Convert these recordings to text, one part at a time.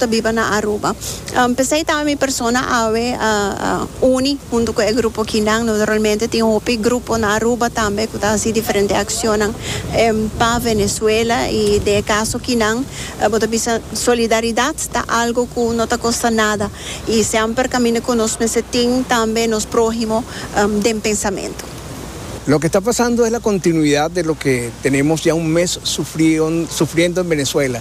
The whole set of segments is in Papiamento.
ta biba na Aruba. Um, pesey tambe mi persona awe a, a uni hunto cu e grupo kinan. Naturalmente tin hopi grupo na Aruba tambe cu ta haci diferente accionnan em, pa Venezuela. Y den e caso kinan, eh, bo ta bisa solidaridad ta algo cu no ta costa nada. Y semper caminda cu nos mester tin tambe nos prohimo em, den pensamento. Loke ta pasando es la continuidad de loke tenemos ya un mes sufrion, sufriendo en Venezuela.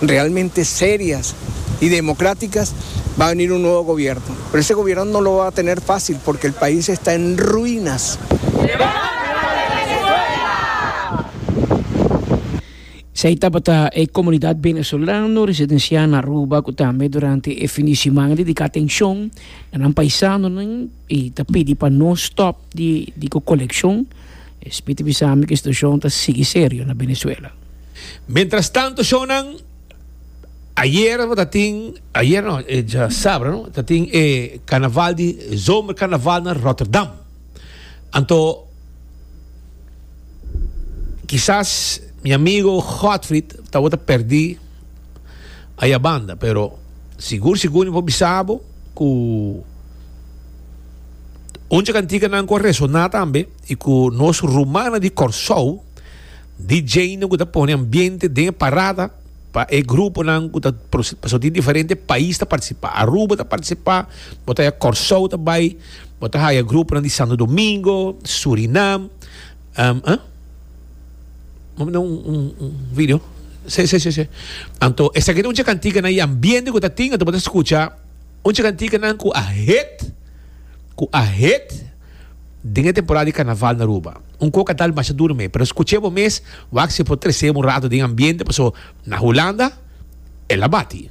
realmente serias y democráticas va a venir un nuevo gobierno, pero ese gobierno no lo va a tener fácil porque el país está en ruinas. Esei tabata e comunidad venezolano residencia na Aruba cu tambe durante e fin di simana dedica atencion na nan paisanonan y ta pidi pa no stop di cu coleccion. E spiti bisa mi cu e situacion ta sigui serio na Venezuela. Mientras tanto shownan, ayer ta tin, ayer no, e ja sabra no, ta tin e carnaval di zomercarnaval na Rotterdam. Anto, quizás mi amigo Godfried ta wota perdi aya banda, pero sigur sigur mi por bisabo cu un dje canticanan cu a resona tambe y cu nos rumannan di Corsou, DJ nan ku ta pone ambiente den e parada pa e gruponan ku ta pasobra di diferente pais ta partisipa aruba ta partisipa bo ta haya kòrsou ta bai bo ta haya gruponan di santo domingo surinam bo manda un video se se se anto esaki ta un chikantikanan i ambiente ku ta tin anto bo ta skucha un chikantikanan ku a hit ku a hit. den e temporada di Carnaval na Aruba. Un coca tal masha duro me, pero scuche bo mes, wak si e por trece bo un rato den ambiente, paso na Hulanda, el a bati.